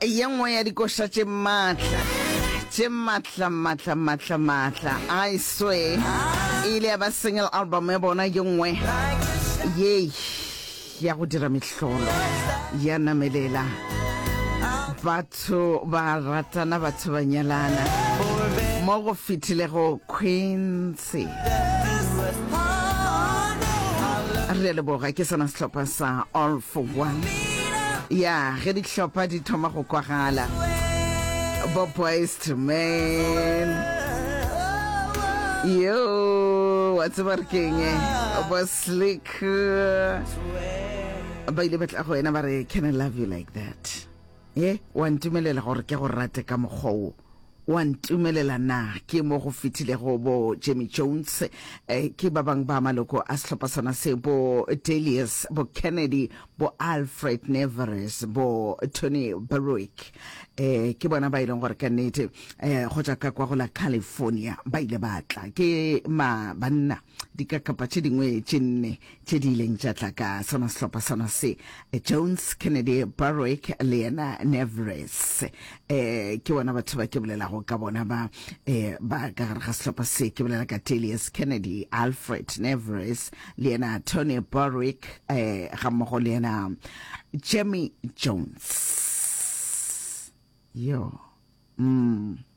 e ye nngwe ya dikoša tše maatla tše maatla maatla maatla maatla i swear e ile ya ba single album ya bona ye nngwe yei ya go dira mehlolo ya namelela batho ba ratana batho ba nyalana mo go fitilego queens se. Re a leboga ke sona sehlopha sa All for One. Ya, ge dihlopha di thoma go kwagala. Bo Boys to Men. Yo, wa tseba re keng? Bo Slick. Ba ile ba tla go wena ba re, can I love you like that? Ye, wa ntumelela gore ke go rate ka mokgwa wo. O a ntumelela na? Ke mo go fetilego bo Jamie Jones, eh, ke ba bang ba maloko a sehlopha sona se, bo Delius, bo Kennedy, bo Alfred Neveres, bo Tony Berwick. Eh, ke bona ba e leng gore ka nnete eh, go tša ka kwa go la California ba ile ba tla. Ke ma banna. dikakapa tše dingwe tše nne tše di ileng tša tla ka sona sehlopha sona se jones kennedy barwick le yena nevres eh ke bona batho ba ke bolelago ka bona ba eh ba ka gare ga sehlopha se ke bolela ka telius kennedy alfred nevres le yena tony barwick eh ga mmogo le yena jemmy jones yo mm.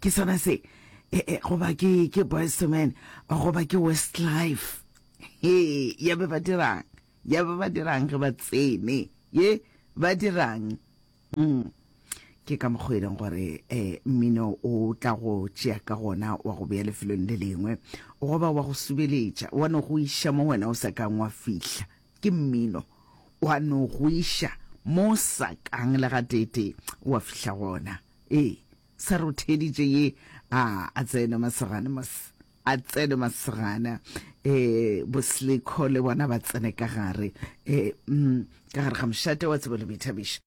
ke sona se eh, eh, goba ke ke boys to men goba ke west life he ya be ba dirang ya be ba dirang ge ba tsene ye ba dirang mm. ke ka mokgwa e leng gore um mmino o tla go tšea ka gona wa go beya lefelong le lengwe goba wa go subeletša wa no go iša mo wena o sa kang wa fihla ke mmino wa no go iša mo sa kang le ga tete wa fihla gona ee Sa rotheditše ye a a tsene masogana mos a tsene masogana e bo slikho le bona ba tsene ka gare e mm ka gare ga mošate wa tsebo le boithabišo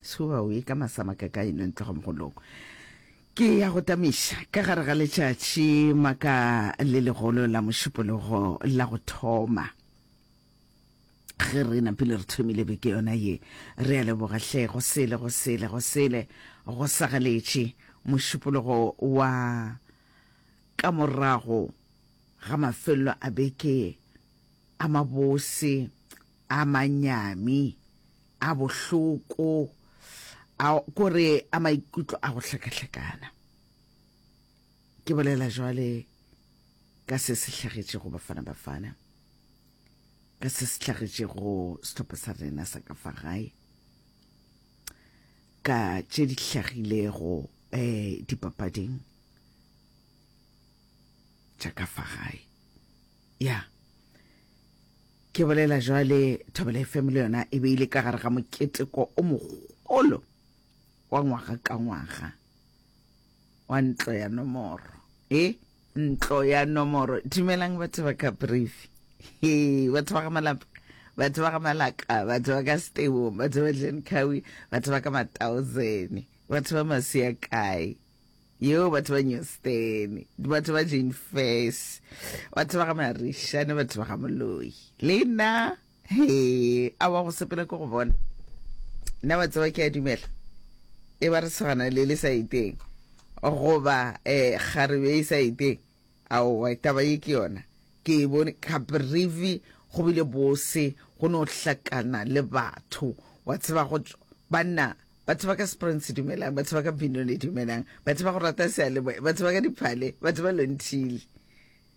shuba o ye ka masama ka ka eno ntloga mogolong ke ya go tamiša ka gare ga letšatši maka le legolo la mošupologo la go thoma ge re napile re thomile beke yona ye re a leboga hle go sele go sele go sele go sagaletše mošupologo wa ka morago ga mafelelo a beke a mabose a manyami a bohloko a kore a maikutlo a go hlakahlakana ke bolela jwale ka se se hlagetšego bafana bafana ka se se hlagetšego sehlopha sa rena sa ka fa gae ka tše di hlagilego um dipapading tša ka fa gae ya ke bolela jwale thobela fm le yona e beile ka gare ga moketeko o mogolo wa ngwaga ka ngwaga wa ntlo ya nomoro e ntlo ya nomoro dumelang batho ba ka brief he batho ba ga malapa batho ba ga malaka batho ba ka stebo batho ba dlenkawi batho ba ka mathousand batho ba masia kae yeo batho ba newstone batho ba jane fes batho ba ga marishane batho ba ga moloi le nna Hee, awa go sepela ko go bona. Nna wa tseba ke a dumela. E ba re segana le le sa iteng. Goba eh kgarebe e sa iteng. Aowa taba ye ke yona. Ke e bone ka brivi go bile bose go no hlakana le batho. Wa tseba go banna ba tseba ka Springs dumelang, ba tseba ka Binoni dumelang, ba tseba go rata sealemoya, ba tseba ka diphale, ba tseba Lonthile.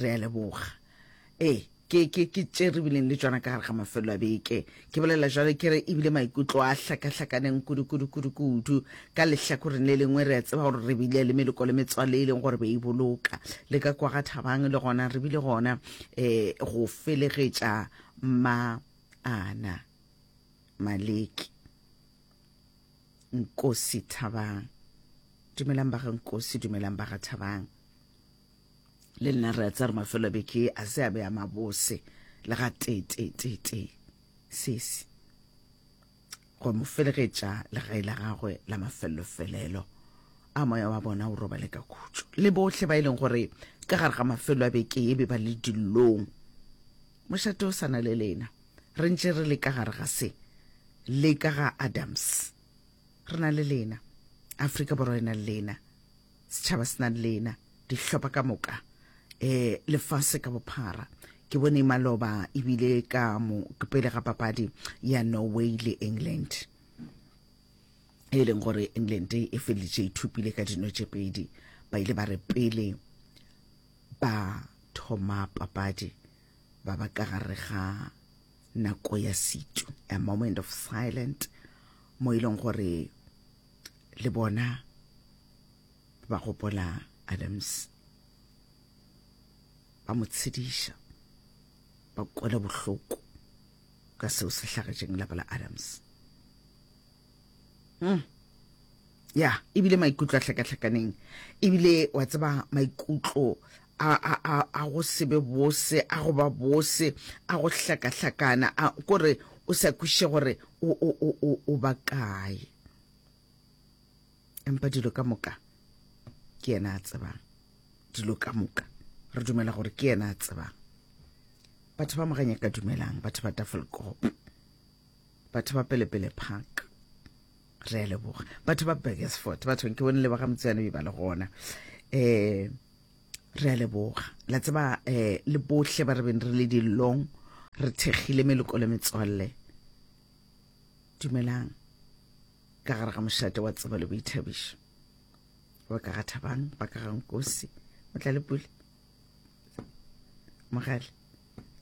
re a leboga ee ke ke ke tše re bileng le tšona ka gare ga mafelelo a beke ke bolela jalo ke re ebile maikutlo a hlakahlakaneng kudu-kudu-kudu-kudu ka lehlakoreng le lengwe re a tseba gore re bile le meloko le metswale e leng gore be e boloka le ka kwa ga thabang le gona re bile gona um go felegetša ma ana maleki nkosi thabang dumelang ba ga nkosi dumelang ba ga thabang le nna re a tsa re mafelo beke a se a be a mabose le ga tetetetete sesi go mo felegetša legae la gagwe la mafellofelelo a moya wa bona o robale ka khutšo le bohle ba e leng gore ka gare ga mafelo a beke e be ba le dillong mošate o sana le lena re ntše re le ka gare ga se le ka ga adams re na le lena afrika borwa e na le lena setšhaba se na le lena dihlopha ka moka um lefase ka bophara ke bone maloba ebile ka mo pele ga papadi ya norway le england e leng gore england e feleditše ithupile e ka dino tše pedi ba ile ba re pele ba thoma papadi ba ba ka gare ga nako ya setso a moment of silent mo e leng gore le bona ba gopola Adams ba mo tshediša ba kwela bohloko ka seo se hlagetšeng lapa la Adams mm. ya ebile maikutlo a hlakahlakaneng ebile wa tseba maikutlo a go sebe bose a go ba bose a go hlakahlakana kore o sa kwiše gore o bakae empa dilo ka moka ke yena a tsebang dilo ka moka re dumela gore ke yena a tsebang batho ba moganya ka dumelang batho ba tafelkop batho ba pelepele park re a leboga batho ba burgersford bathong ke bone leboga motseyane be ba le gona um re a leboga la tseba um le botlhe ba re beng re le dilong re thekgile meloko le metswalle Dumelang. Ka gare ga mošate wa tsebo le boithabišo. Ba ka ga Thabang, ba ka ga Nkosi, o tla le pule. Mogale,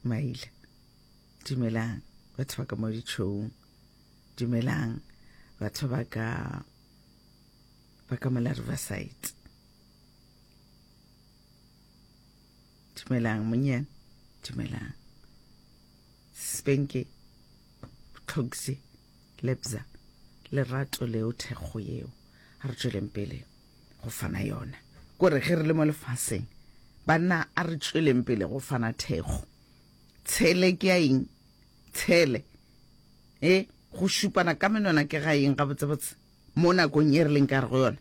Maila. Dumelang, batho ba ka mo ditšhoung. Dumelang, batho ba ka ba ka mola Riverside. Dumelang, monyane. Dumelang. Spenke, Tlhogse, Lebza, lerato leo thekgo yeo. A re tšweleng pele go fana yona. Kore ge re le mo lefaseng, banna a re tšweleng pele go fana thekgo. Tshele ke ya eng? Tshele. E, go šupana ka menwana ke ga eng gabotsebotse mo nakong e re leng ka re go yona?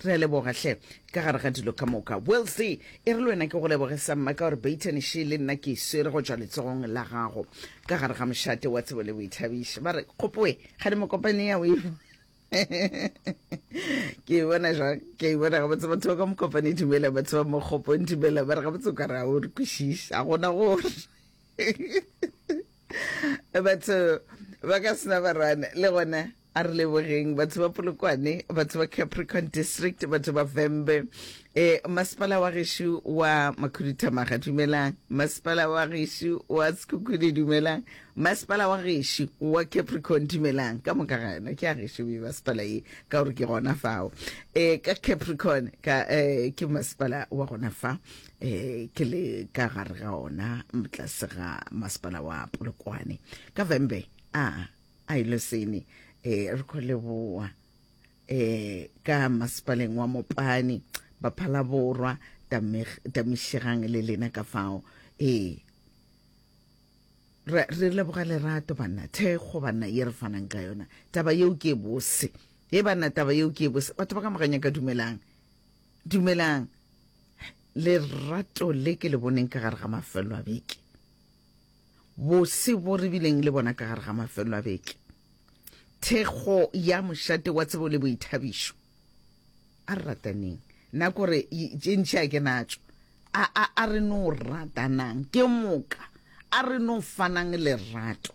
Re a leboga hle. Ka gare ga dilo ka moka. Wilsey, e re le wena ke go leboge sa mma ka gore Baton še le nna ke e swere go tšwa letsogong la gago. Ka gare ga mošate wa tsebo le boithabiši. Ba re, Kgopoe, kgane mokopane ya o e bo. Ke e bona jwang? Ke e bona gabotse batho ba ka mokopane dumela, batho ba mo kgopong dumela, ba re gabotse o ka re ga o re kwešiše, ga gona gore. Batho ba ka sena barwana le gona. A re lebogeng batho ba Polokwane, batho ba Capricorn District, batho ba Vhembe. E, masepala wa gešo wa Makhuduthamaga, dumelang. Masepala wa gešo wa Sekhukhune, dumelang. Masepala wa gešo wa Capricorn, dumelang. Ka moka ga yona ke a gešo e masepala ye, ka gore ke gona fao. E, ka Capricorn, ka e, ke masepala wa gona fa. E, ke le ka gare ga ona, tlase ga masepala wa Polokwane. Ka Vhembe, a. a ile sene e eh, re go leboa e eh, ka masepaleng wa mopane baphala borwa tamišegang le lena ka fao ee re leboga lerato banna thekgo banna ye re fanang ka yona taba yeo ke bose e banna taba yeo ke bose batho ba ka moganya ka dumelang dumelang lerato le ke le boneng ka gare ga mafelo a beke Bose bjo re bileng le bona ka gare ga mafelelo a beke, thekgo ya mošate wa tsebo le boithabišo. A re rataneng. Na kore tše ntši a ke natšo? A, a, a re no ratanang ke moka, a re no fanang lerato.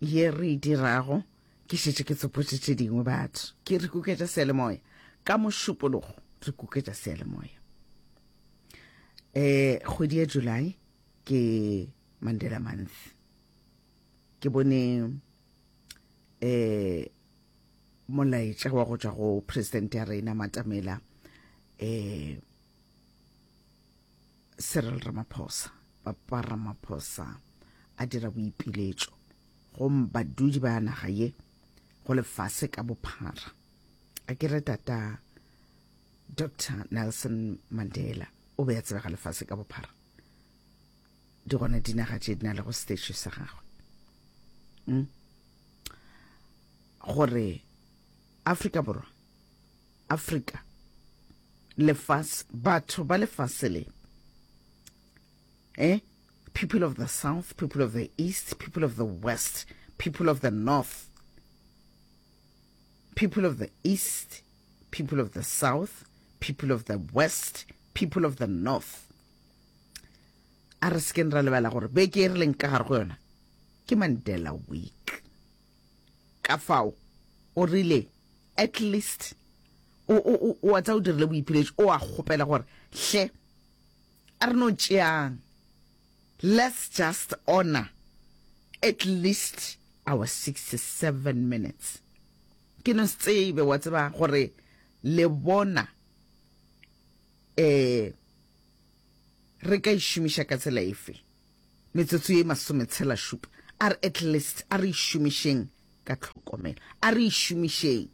ye re e dirago ke šetše ke tsopotše tše dingwe batho ke re kuketša seelemoya ka mošupologo re kuketša seelemoya um kgwedi ya july ke mandela month ke bone um molaetša wa go tšwa go president ya rena matamela um Cyril Ramaphosa, Papa Ramaphosa a dira boipiletšo go badudi ba naga ye go lefase ka bophara a kere tata Dr Nelson Mandela o be a tsebega lefase ka bophara di gona dinaga tše di na le go stage sa gagwe hmm? gore Afrika Borwa Afrika, lefase, batho ba lefase le, eh, people of the south, people of the east, people of the west, people of the north, people of the east, people of the south, people of the west, people of the north. A re sekeng ra lebala gore beke e re leng ka gare go yona ke Mandela Week. Ka fao o rile, At least o, o, o, o a tsa o dirile boipheletšo, o a kgopela gore, Hle, a re no tšeang, let's just honor at least our 67 minutes. Ke no se tsebe, wa tseba, gore le bona eh re ka e šomiša ka tsela efe. Metsotso ye masometshelašupa. A re at least a re e šomišeng ka tlhokomelo. A re e šomišeng.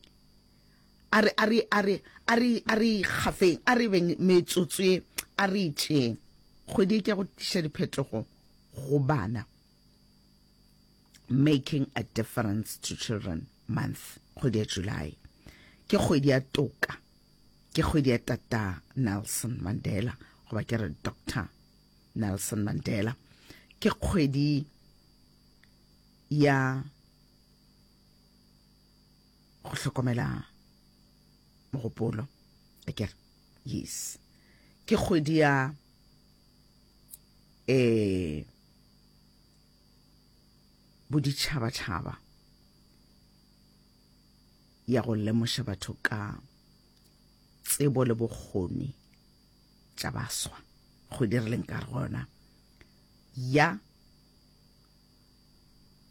A re, a re, a re, a re, a re e kgafeng. A re beng metsotso ye, a re e tšeeng. Kgwedi e ke go tliša diphetogo go bana. Making a difference to children month. Kgwedi ya July. Ke kgwedi ya toka. Ke kgwedi ya Tata Nelson Mandela, goba ke re Doctor Nelson Mandela. Ke kgwedi ya go hlokomela mogopolo akere yes ke kgwedi ya eh boditšhabatšhaba ya go lemoša batho ka tsebo le bokgoni tša baswa go dirileng ka gona ya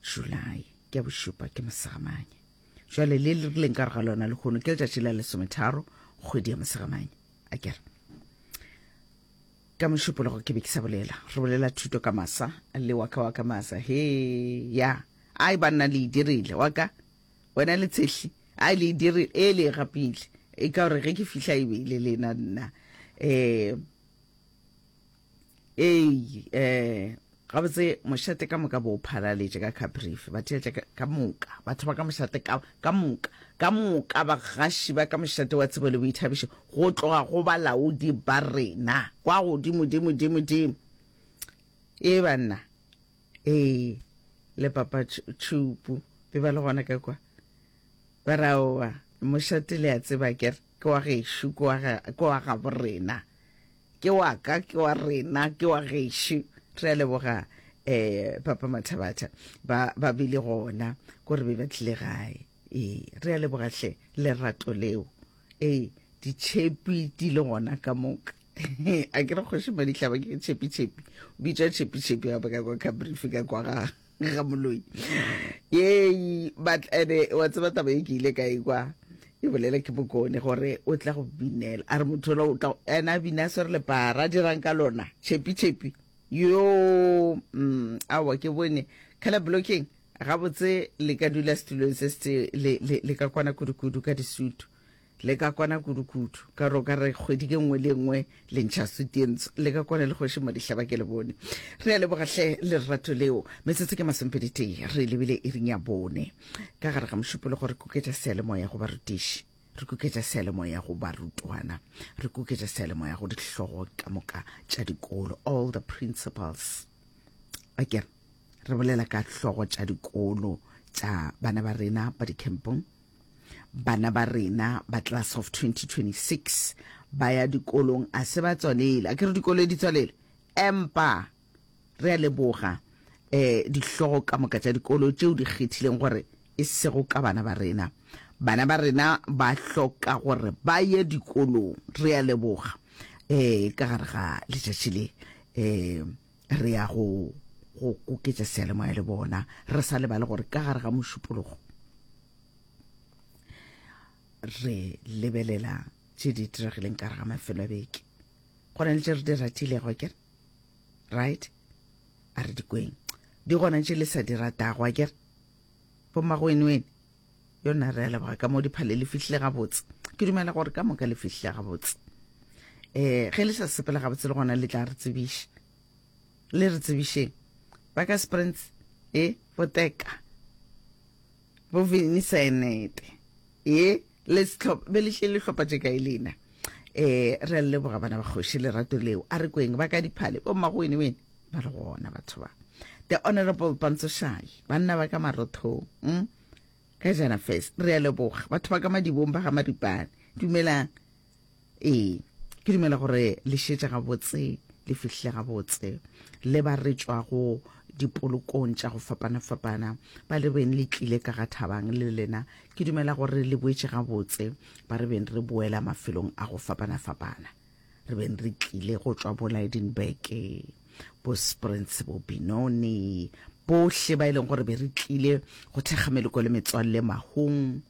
July ke ya bošupa ke mosegamanye jwale le le rileng ka ga lona lehono ke letšatši la lesometharo kgwedi ya mosegamanye a kere ka mošupologo ke be ke sa bolela re bolela thuto ka masa le waka waka masa he ya ai banna le e dirile waka Wena le tshehli a le dire e le gapile e ka gore ge ke fihla e be le lena nna eh ei eh gabotse mošate ka moka bo phalaletše ka caprife ba theetša ka moka batho ba ka mošate ka moka ka moka bagaši ba ka mošate wa tsebo le boithabišo go tloga go balaodi ba rena kwa godimodimodimodimo e banna Ee, le papa tšhupu be ba le gona ka kwa. Ba re, Aowa, mošate le a tseba ker, ke wa gešo, ke wa, ke wa gabo rena. Ke wa ka, ke wa rena, ke wa gešo. Re a leboga eh papa Mathabatha ba ba bile gona gore be ba tlile gae. Ee, re a leboga hle lerato leo. Ee, ditšhepi di le gona ka moka. a ke re kgoši madihlaba ke tšhepi-tšhepi o bitswa tšhepi-tšhepi gape ka kwa cabrifi ka kwa ga ga moloi yei but ene wa tseba taba e ke ile ka ekwa e bolela ke bokone gore o tla go binela a re motho ola o tla ene a bina a swere lepara a dirang ka lona tšhepi-tšhepi yo mm, awa ke bone color blocking Gabotse le ka dula setulong se se le, le, le ka kwana kudu-kudu ka disutu. Le ka kwana kudu-kudu. Ka gore o ka re kgwedi ke nngwe le nngwe le ntšha sutu ye ntsho. Le ka kwana le Kgoši Madihlaba ke le bone. Re a leboga hle lerato leo. Metsotso ke masomepedi-tee re lebile iring ya bone. Ka gare ga mošupologo re kuketša seyalemoya go barutiši. Re kuketša seyalemoya go barutwana. Re kuketša seyalemoya go dihlogo ka moka tša dikolo, all the principals. Akere? re bolela ka hlogo tša dikolo tša bana ba rena ba dikempong bana ba rena ba class of 2026 ba ya dikolong a se ba tswalele a ke re dikolo di tswalele empa re a leboga eh dihlogo ka moka tša dikolo tšeo di kgethileng gore e sego ka bana ba rena bana ba rena ba hloka gore ba ye dikolong re a leboga eh ka gare ga letšatši le eh re ya go go koketša seyalemoya le bona re sa lebale gore ka gare ga mošupologo re lebelela tše di diregileng ka gare ga mafelo a beke go na le tše re di ratilego ke right a re dikweng di gona tše le sa di ratago a kere bommagoenwene yona re a leboga ka mo diphale le fihlile gabotse ke dumela gore ka moka le fihlile gabotse um ge le sa sepela gabotse le gona le tla re tsebiša le re tsebišeng ba ka sprins e eh, boteka bovini senete e eh, le setlhopha be lehle le tlhopha tse kae lena um re a leboga bana ba kgoši lerato leo a re kweng ba ka diphale bo mmagoene wene ba re gona batho ba the honorable bantsoshayi banna ba ka marothong mm? ka jana fes re ya leboga batho ba ka madibong ba ga maripane dumelang ee ke dumela gore le šetša gabotse le fihle gabotse le ba re tšwago dipolokong tša go fapana-fapana ba le beng le tlile ka ga thabang le lena ke dumela gore le boetše gabotse ba re beng re boela mafelong a go fapana-fapana re beng re tlile go tšwa bo Lydenburg bo Springs bo Benoni bohle ba e leng gore be re tlile go thekga meloko le metswalle mahong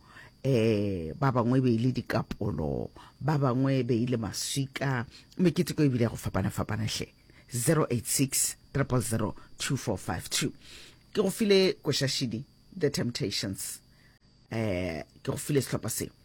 eh ba bangwe be ile dikapolo ba bangwe be ile maswika mekete ko ebile go fapana fapana hle 086 000 2452 ke go file košašidi the temptations eh ke go file sehlopha se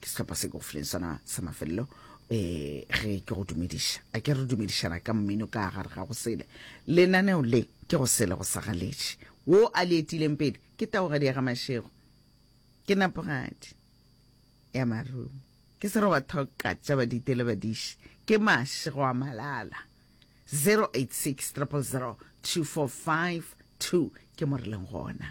ke sehlopha se kaofileng sona sa mafelelo um ge ke go dumediša a ke re dumedišana ka mmino ka gare ga go sele lenaneo le ke go sele go sagaletše wo a le etileng pele ke taogadi ya ga mašego ke napogadi ya marumo ke sero ba thoka tša badite le badiši ke mašego a malala 086 000 2452 ke mo re leng gona